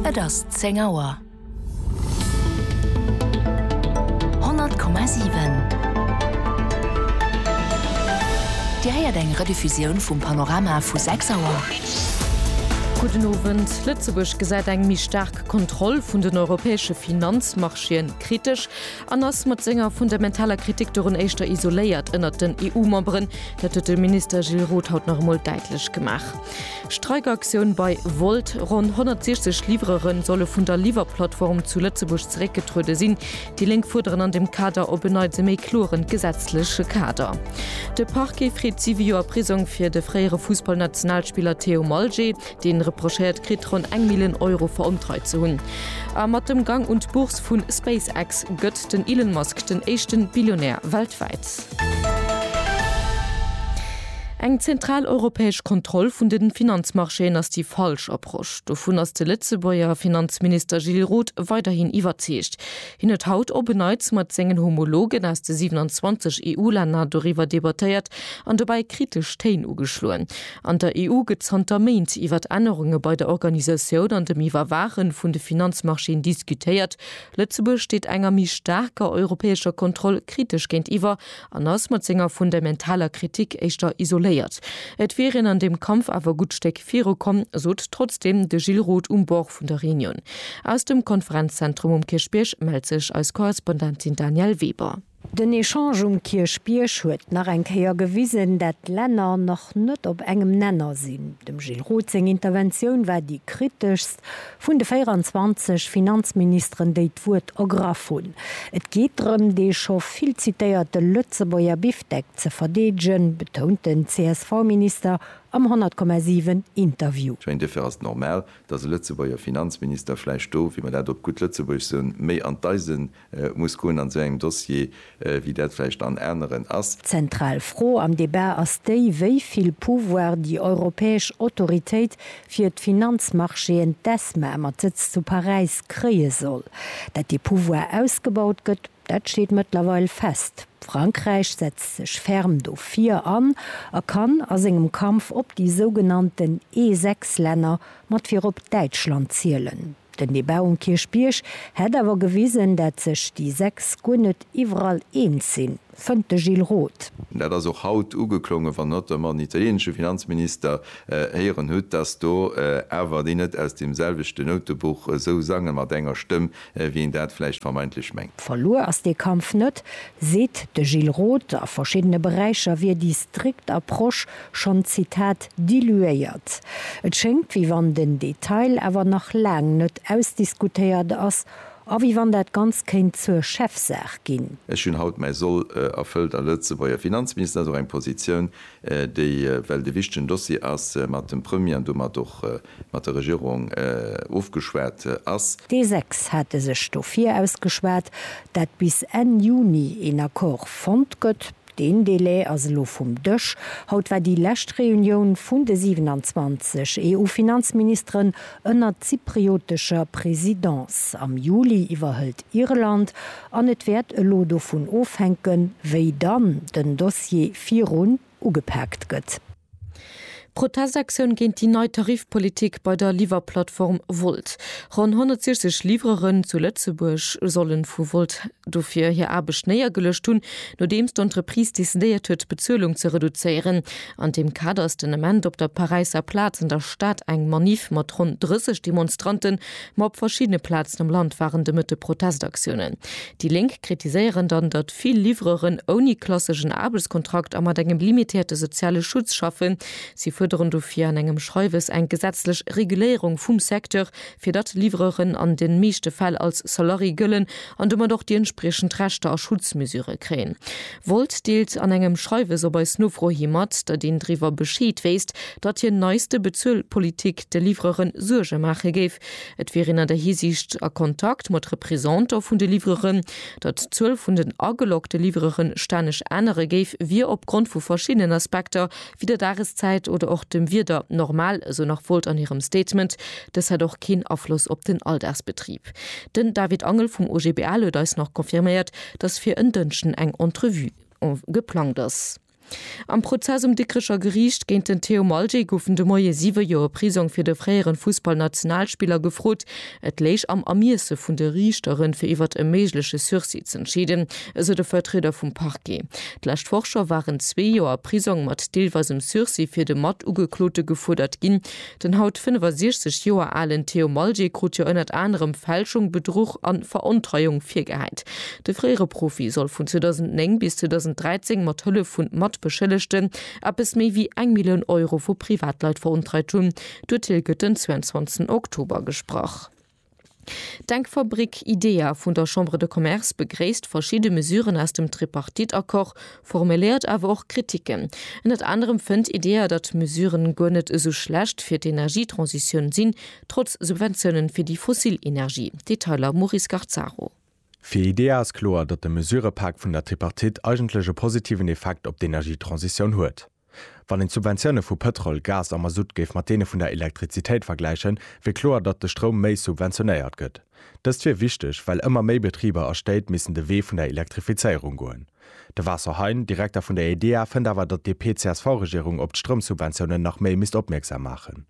Et ass zéng Auer. 100,7 Dir héiert eng Rediffusioun vum Panorama vu 6 Auer. Gudden Owend. Lëtzebuerg gesäit eng méi staark Kontroll vun den europäesche Finanzmarchéen kritesch an ass mat senger fundamentaler Kritik dorun éischter isoléiert ënnert den EU-Memberen. Dat huet de Minister Gilles Roth haut nach emol däitlech gemaach. Streikaktioun bei Wolt, Ronn 160 Livreuren solle vun der Liwwerplattform zu Lëtzebuerg zeréckgetruede sinn. Déi Lénk fuerderen an dem Kader op en Neits e méi kloren gesetzleche Kader. De Parquet freet 7 Joer Prisong fir de fréiere Fussballnationalspiller Theo Malget. Dee reprochéiert kritt, ronn eng Millen Euro verontreit ze hunn. A mat dem Gang un d'Bourse vu SpaceX gëtt den Elon Musk den éischte Billionär weltwäit. Eng zentral europäesch Kontroll vun de Finanzmarchéen ass déi falsch Approche. Dovun ass de Lëtzebuerger Finanzminister Gilles Roth weiderhin iwwerzeegt. Hien huet haut op en Neits mat sengen Homologen aus de 27 EU-Länner doriwwer debattéiert an dobäi kritesch Téin ugeschloen. An der EU gëtt zanter Méint iwwert Ännerunge bei der Organisatioun an dem Iwwerwaache vun de Finanzmarchéen diskutéiert, Lëtzebuerg steet enger méi staarker europäescher Kontroll kritesch géintiwwer an ass mat senger fundamentaler Kritik éischter isoléiert. Et wier een an deem Kampf awer gutt Stéck viru komm, sot trotzdeem de Gilles Roth um Bord vun der Reunion. Aus dem Konferenzzentrum um Kierchbierg mellt sech eis Korrespondentin Danièle Weber. Den Echange um Kierchbierg huet nach eng Kéier gewisen, dat d'Länner nach net op engem Nenner sinn. Dem Gilles Roth seng Interventioun war déi kriteschst vun de 24 Finanzministeren, déi d'Wuert ergraff hunn. Et geet drëm, dee scho vill zitéierte Lëtzebuerger Bifdeck ze verdeedegen, betount den CSV-Minister am 100,7 Interview. Tja, een Defer ass normal, datt e Lëtzebuerger Finanzminister vläicht do, wéi mer dat op gutt Lëtzebuergesch soen, méi an d'Eisen muss goen an esou engem Dossier, wéi dat vläicht an aneren ass. D'zentral Fro am Debat ass déi, wéi vill Pouvoir déi europäesch Autoritéit fir d'Finanzmarchéen, d'ESMA, mat Sëtz zu Paräis, kréie soll. Datt dee Pouvoir ausgebaut gëtt, dat steet mëttlerweil fest. Frankräich setzt sech ferm dofir an a kann a sengem Kampf op déi sougenannten E6-Länner, mat virop Däitschland, zielen. Den Debat um Kierchbierg hätt awer gewisen, dat sech déi 6 guer net iwwerall eens sinn, fënnt de Gilles Roth. Dat ass och haut ugeklongen, wann Hatt der mam italienesche Finanzminister héieren hutt, datt do awer déi net aus deem selwechte Noutebuch esou sange mat enger Stëmm, wéi een dat vläicht vermeintlech mengt. Verluer ass dee Kampf net, seet de Gilles Roth. A verschiddene Beräicher wier déi strikt Approche schonn d'Zitat diluéiert. Et schéngt, wéi wann den Detail awer nach laang net ausdiskutéiert ass a wéi wann dat Ganzt kéint zur Chefsaach ginn. Ech hunn haut mäi Soll erfëllt a Lëtzebuerger Finanzminister ass och eng Positioun, déi, well et e wichtegen Dossier ass, mat dem Premier an domat och mat der Regierung ofgeschwat ass. Déi sechs hate sech dofir ausgeschwat, dat bis Enn Juni een Accord fonnt gëtt. Deen Delai ass elo vum Dësch. Haut war déi lescht Reunioun vun de 27 EU-Finanzministeren ënner zypriotescher Presidence. Am Juli iwwerhëlt Irland an et wäert elo dovun ofhänken, wéi dann den Dossier virun ugepaakt gëtt. Protestaktioun géint déi nei Tarifpolitik bei der Liwwerplattform Wolt. Ronn 160 Livreuren zu Lëtzebuerg solle vu Wolt dofir hir Aarbecht néiergeluecht hunn, nodeems d'Entreprise decidéiert huet, d'Bezuelung ze reduzéieren. An deem Kader ass den Ament op der Paräisser Plaz an der Stad eng Maniff mat ronn 30 Demonstranten, ma op verschiddene Plazen am Land waren de Mëtte Protestaktiounen. Déi Lénk kritiséieren dann, datt. Vill Livreuren ouni klasseschen Aarbechtskontrakt a mat engem limitéierte soziale Schutz schaffen. Si fuerderen dofir an engem Schreiwes eng gesetzlech Reguléierung vum Secteur, fir datt Livreuren an de meeschte Fäll als Salarié gëllen an domat och déi entspriechend Rechter a Schutzmesure kréien. Wolt deelt an engem Schreiwes op eis Nofro hi mat, datt een driwwer Bescheed wéisst, datt hir neiste Bezuelpolitik de Livreure Suerge maache géif. Et wier een an där Hisiicht a Kontakt mat Représentant vun de Livreuren. Datt d'Zuel vun den ageloggte Livrere stänneg ännere géif, wier opgrond vu verschiddenen Aspekter, wéi der Dageszäit oder och dem Wieder, normal, esou nach Wolt an hirem Statement. Dës hätt och keen Afloss op den Alldagsbetrib. Den David Angel vum OGBL huet eis nach confirméiert, datt fir en Dënschden eng Entrevue geplangt ass. Am Prozess um Dikrecher Geriicht géint den Theo Malje goufen de Moie siwe Joer Prisong fir de fréieren Fussballnationalspiller gefrot. Et léich am Ermiesse vun de Riichteren, fir iwwert e méigleche Sursis z'entscheeden, esou de Vertrieder vum Parquet. D'lescht Woch scho waren zwee Joer Prisong mat deelweisem Sursis fir de Matugeklote gefuerdert ginn. Den haut 65 Joer alen Theo Malje krut jo ënnert anerem Fälschung, Bedruch a Verontreiung virgehäit. De fréiere Profi soll vun 2009 bis 2013 mat Hëllef vu Matbeschëllegten eppes méi wéi eng Millioun Euro vu Privatleit verontreit hunn. D'Urteel gëtt den 22 Oktober gesprach. D'Denkfabrik IDEA vun der Chambre de Commerce begréisst verschidde Mesuren aus dem Tripartite-Accord, formuléiert awer och Kritiken. Ënnert anerem fënnt IDEA, datt d'Mesuren guer net esou schlecht fir d'Energietransitioun sinn, trotz Subventiounen fir déi fossil Energie. Detailer, Maurice Garzaro. Fir IDEA ass kloer, datt de Mesurepak vun der Tripartite eigentlech e positiven Effekt op d'Energietransitioun huet. Wann een d'Subventioune vu Pëtrol, Gas a Masutt géif mat deene vun der Elektrizitéit vergläichen, wier kloer, datt de Stroum méi subventionéiert gëtt. Dëst wier wichteg, well ëmmer méi Betriber a Stéit missen de Wee vun der Elektrifizéierung goen. De Vaso Hein, Direkter vun der EDEA, fënnt awer, datt d'DP-CSV-Regierung op d'Stroumsubventiounen nach méi misst opmierksam maachen.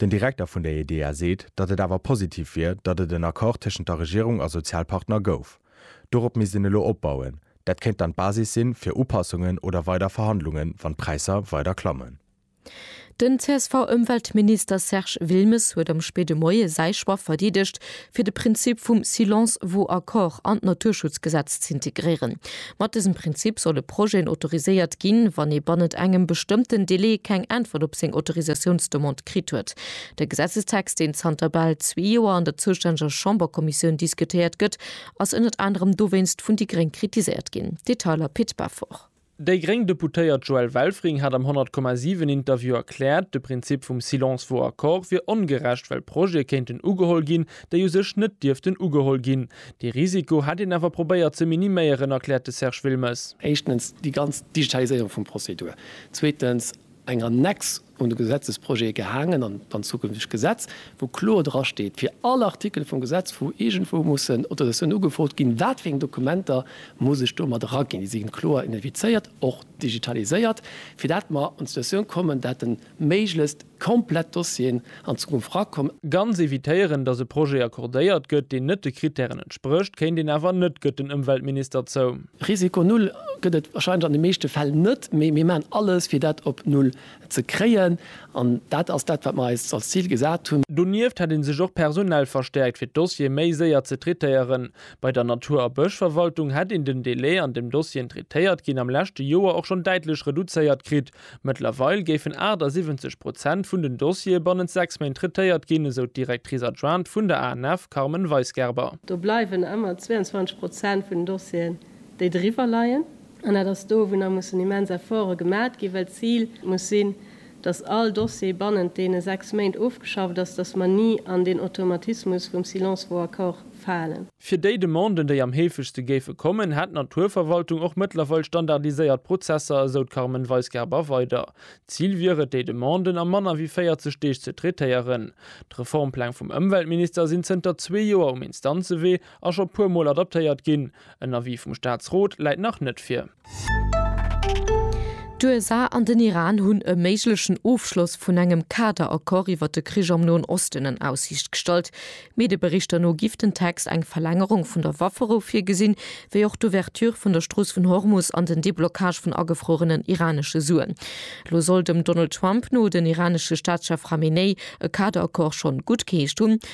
Den Direkter vun der EDEA seet, datt et awer positiv wier, datt et en Accord tëschent der Regierung a Sozialpartner gouf. Dorop misst een elo opbauen. Dat kéint dann d'Basis si fir Upassungen oder weider Verhandlungen, wann d'Präisser weider klammen. Den CSV-Ëmweltminister Serge Wilmes huet am spéide Moie säi Choix verdeedegt, fir de Prinzip vum Silence vaut accord an d'Naturschutzgesetz z'integréieren. Mat dësem Prinzip solle Projeten autoriséiert ginn, wann ee bannent engem bestëmmten Delai keng Äntwert op seng Autorisatiounsdemande kritt huet. De Gesetzestext, deen zanter bal zwee Joer an der zoustänneger Chamberkommissioun diskutéiert gëtt, ass ënnert anerem dowéinst vun déi gréng kritiséiert ginn. Detailer Pit Beffort. Déi gréng Deputéiert Joëlle Welfring hat am 100,7 Interview erkläert, de Prinzip vum Silence vaut accord wier ongerecht, well Projete kéinten ugeholl ginn, déi u sech net dierften ugeholl ginn. Dee Risiko hätt een awer probéiert ze miniméieren, erkläert de Serge Wilmes. Éischtens déi ganz Digitaliséierung vum Prozedur. Zweetens eng Annexe un de Gesetzesprojet gehaangen, an dann zukünftegt Gesetz, wou kloer dra steet, fir all Artikel vum Gesetz, wou iergendwou mussen Autorisatiounen ugefrot ginn, wat fir eng Dokumenter muss ech do mat eraginn. Déi si kloer identifizéiert, och digitaliséiert, fir dat mer an d'Situatioun kommen, dat de méiglechst komplett Dossieren an Zukunft erakomm. Ganz evitéieren, datt e Projet accordéiert gëtt, deen net de Krittären entsprécht, kéint een awer net, gëtt den Ëmweltminister zou. Risiko Null gëtt et warscheinlech an de meeschte Fäll net, mee mir maachen alles, fir dat op Null ze kréien. An dat ass dat, wat mir eis als Zil gesat hunn. Donieft hätt ee sech och personell verstäerkt, fir d'Dossiere méi séier ze traitéieren. Bei der Natur a Bëschverwaltung hätt een den Delai, an deem Dossieren traitéiert ginn, am leschte Joer och schonn däitlech reduzéiert kritt. Mëttlerweil géifen 78 Prozent vun den Dossiere bannent sechs Méint traitéiert ginn, esou d'Directrice adjointe vun der ANF Carmen Weisgerber. Do bleiwen ëmmer 22 Prozent vun den Dossieren, déi driwwer leien. An dat ass do, wou nach mussen immens Efforte gemat ginn, well d'Zil muss sinn, datt all Dossier bannent deene sechs Méint ofgeschafft ass, datt mer ni an deen Automatismus vum Silence vaut accord falen. Fir déi Demanden, déi am heefegste géife kommen, hätt d'Naturverwaltung och mëttlerweil standardiséiert Prozesser, esou d'Carmen Weisgerber weider. D'Zil wier et, déi Demanden a manner wéi 40 Deeg ze traitéieren. D'Reformpläng vum Ëmweltminister sinn zënter zwee Joer um Instanzewee a scho puermol adaptéiert ginn. En Avis vum Staatsrot läit nach net vir. D'USA an den Iran hunn e méiglechen Ofschloss vun engem Kader-Accord iwwer de Krich am Noen Osten en Aussiicht gestallt. Medieberichter no giff den Text eng Verlängerung vun der Wafferou virgesinn, wéi och d'Ouverture vun der Strooss vun Hormus an den Deblockage vun agefruerenen iranesche Suen. Lo soll dem Donald Trump no den iranesche Staatschef Khamenei e Kader-Accord schonn guttgeheescht hunn,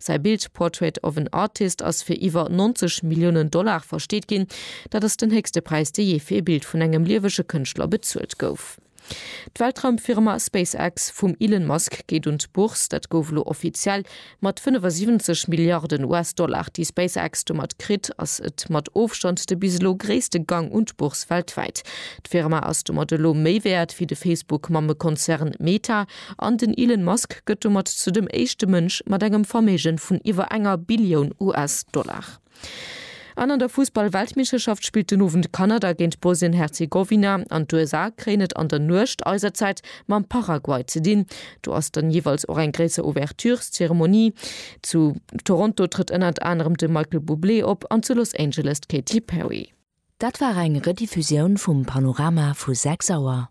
Säi Bild Portrait of an Artist ass fir iwwer 90 Milliounen Dollar versteet ginn. Dat ass den héchste Präis, dee jee fir ee Bild vun engem liewege Kënschtler bezuelt gouf. D'Weltraumfirma SpaceX vum Elon Musk geet un d'Bourse. Dat gouf elo offiziell. Mat 75 Milliarden US-Dollar, déi SpaceX domat kritt, ass et mat Ofstand de bis elo gréisste Gang un d'Bourse weltwäit. D'Firma ass domat elo méi wäert wéi de Facebook-Mammekonzern Meta. An den Elon Musk gëtt domat zu dem éischte Mënsch mat engem Verméigen vun iwwer enger Billioun US-Dollar. An an der Fussball-Weltmeeschterschaft spillt den Owend Kanada géint Bosnien-Herzegowina an d'USA kréien et an der Nuecht eiser Zäit mam Paraguay ze dinn. Do ass dann jeeweils och eng gréisser Ouvertureszeremonie. Zu Toronto trëtt ënnert anerem de Michael Bublé op an zu Los Angeles d'Katy Perry. Dat war eng Rediffusioun vum Panorama vu 6 Auer.